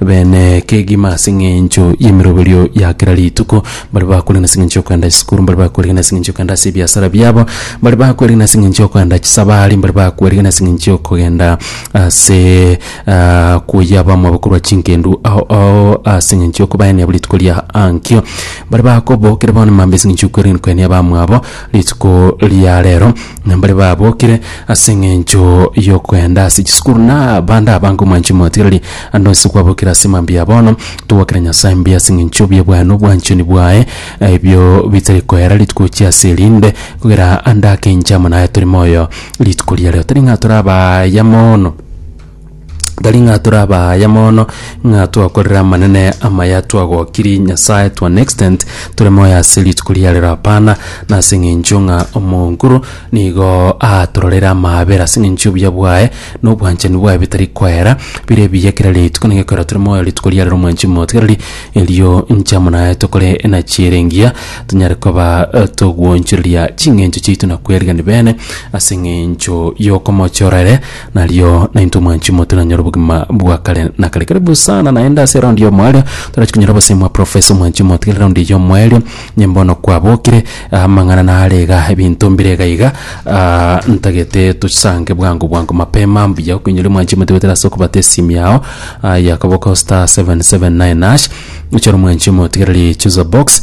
bene kegima ase eng'encho y'emeroberio ya kera rituko, mbare bakorigana ase eng'encho y'okoenda chisukuru, mbare bakorigana ase eng'encho y'okoenda ase ebiasara biabo, mbare bakorigana ase eng'encho y'okoenda chisabari, mbare bakorigana ase eng'encho y'okogenda ase ah, koyia bamwabo korwa chinkendu ao ao ase eng'encho y'okobaenea buri rituko ria ankio, mbare bakobookera bono mambia ase eng'encho y'okwerigania koenea bamwabo, Rituko ria reero mbare babokire ase eng'encho y'okoenda ase chisukuru na bande abange omwanchani motigereri ande onsi kwabokire ase mambia bono togokera Nyasae mbuya ase eng'encho y'obwana obwanchani bwaye ebio bitari koera rituko chia ase erinde kogera ande ake inche amo naye tore moyo rituko ria reero tari ng'a tore abaya mono Tari ng'a tore abaaya mono ng'a twakorire amanene amaya twagokiri Nyasae to an extent tore moyo ase rituko ria rero hapana, na ase eng'encho ng'a omonguru nigo atororere amaabera ase eng'encho y'obuya bwaye na obwanchani bwaye bitari koera bire ebiya kera rituko nigo ekerore tore moyo rituko ria rero omwanchani motigareri erio inche amo naye tokore ng'a chiere engiya tonyare koba togwochoreria ching'encho chiaito na kwerigani bene ase eng'encho y'okomochora ere. Nario naintwe mwanchi motiranyora obogima bwa kare na kare. Karibu sana naende ase raundi ya omoerio torachi konyora obosemi bwa profesa omwanchi motigere raundi ya omoerio nye mbono kwabokire ah, amang'ana nare iga ebinto mbire iga iga ah, ntagete tosange bwango bwango mapema mbuya okonyoria mwanchi motigotera ase okobata esimi yao ah, yakaboka star 779 nash ochore mwanchi motigereri chooser box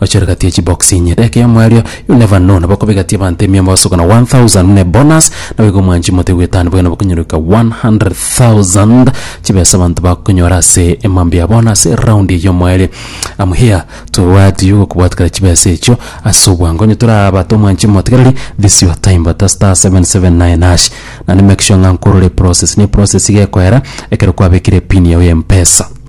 Ochore gati ye chibox inye deka eyomo erio you never know nabo okobegatia abanto emiyomo bagasokana 1000 buna ebonus nabo igo mwanchi mote gwetanwa boigo nabo okonyoreka 100,000 chibesa abanto bakonyora ase emambia ya bonus round eyomo erio am here to what you gokobwatekera chibesa echio ase obwango onye torabate omwanchi omotigereri this your time bata star 779 hash naende make sure ng'a nkorore eprocess ne eprocess iga ekoera ekero kwabekire epin yago ya mpesa.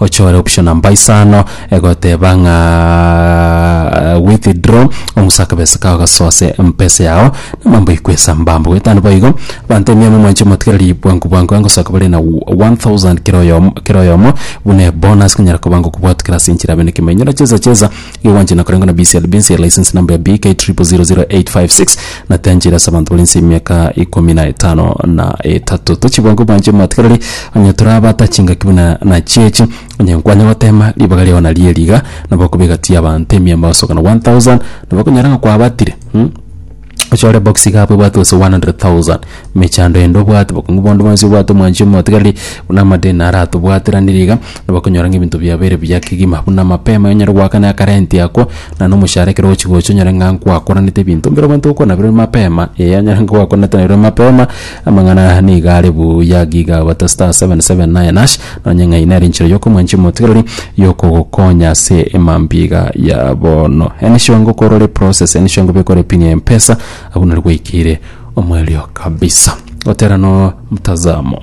Ochore option namba isano egoteba ng'a withdraw omusa akabesa kao gasoa ase mpesa yao namambo ikwesa mbambo goetano boigo abanto emiamo mwanche motigereri bwango bwango angosoka bare na 1000 kera oyomo kera oyomo buna ebonus konyara koba ngokobwato kera ase enchera abe nekemenyi na chesa chesa Igo gwanchina korengwa na BCLB ense ya license number ya BK 000856 na tianchire ase abanto bari ense y'emiaka ikomi na etano na etato. Tochibwange obwanche omatigarari onye torabate chingaki buna nachio echi onye nkwanya gotema ribaga riao nario eri iga nabo okobeka ti abanto emiamba basoka na 1000 nabo okonyora ng'a kwabatire. ochore box iga abwo ebwate gose 100,000 mechando ende obwate bokong'u bondo bwensi obwate omwanchi omotigareri buna amadeni naro atobwateranire iga nabo okonyora ng'a ebinto biabo bire buya kegima buna mapema onyare goaka na akarenti ako na nomoshahara ekero ogochi gocha onyore ng'a nkwakoranete ebinto bire bonto okonaberwa mapema eh onyore ng'a kwakoranete naberwa mapema. Amang'ana nigo are buya giga gote star seven seven nine hash nonye ng'ai nere enchera yokomwanchia omotigereri yokogokonya ase emambiga ya bono enisure ng'o korore process enisure ng'o bekore pin ya mpesa abwo nari gwaikeire omoerio kabisa gotera no mtazamo.